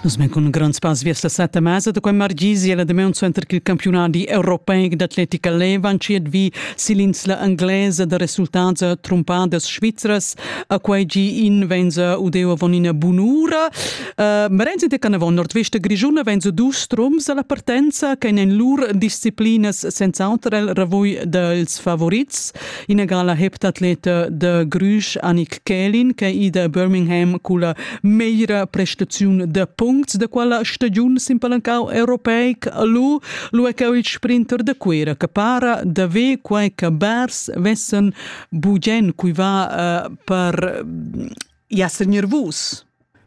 Nus men cun grond spass viers la setta mesa da quei margisi e la demeun suenter ch'il campiunadi europeic d'atletica leva entschiet vi sill'insla englesa da resultats trumpadas svizras a quei gi in venza udeu avon ina bunura. Uh, Merenzi de Canavon nordvesta grischuna venza dus strums alla partenza che en lur disciplinas senz'auter el ravoi dels favorits ina gala heptatleta de Grüsch Annik Kelin che ida a Birmingham con la meira prestazione de puncts de quella stagiun simpalancau europeic lu lu è il sprinter de Cuera che para de ve quei che Bers vessen bugen cui va uh, per jasser nervus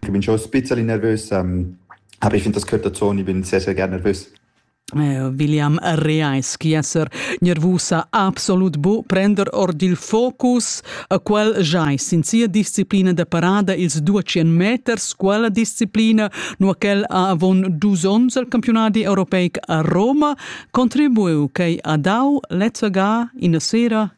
Ich bin schon ein bisschen nervös. Ähm, aber ich finde das gehört dazu und ich bin sehr, sehr gerne nervös. Eh, William reais chi esser nervusa absolut bu prender ord il focus a quel jais in sia disciplina da parada ils 200 meters quella disciplina nu quel ha avon dus ons al campionati europeic a Roma contribuiu quei a dau lezzaga in sera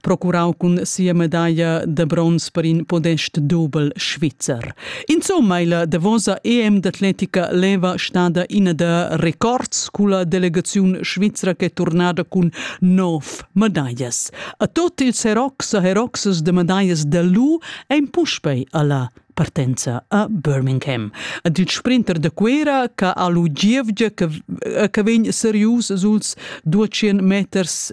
procurau cun sia medaglia de bronz per in podest dubel svizzer. Insomma, la davosa EM d'atletica leva stada ina da records culla delegaziun svizra che turnada cun nov medaglas. A tot ils herox e heroxes de medaglas de lu ein puspei alla partenza a Birmingham. Ad il sprinter de Cuera che ha lu gievgia che, che vegn serius suls 200 meters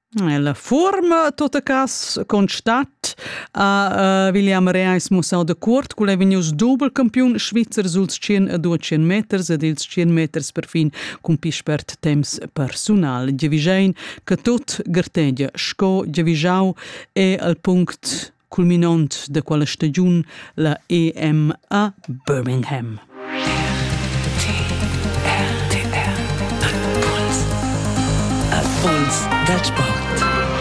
La fuorma tota cas constat ha William Reis mussau dacuort ch'el ei vegnius dubelcampiun svizzer sul tschien e dua tschien meters ed ils tschien meters perfin cun pli spert temps persunal. Giavischein che tut gartegia sco giavischau è al punct culminont da quella stagiun la EMA Birmingham. Puls dal sport.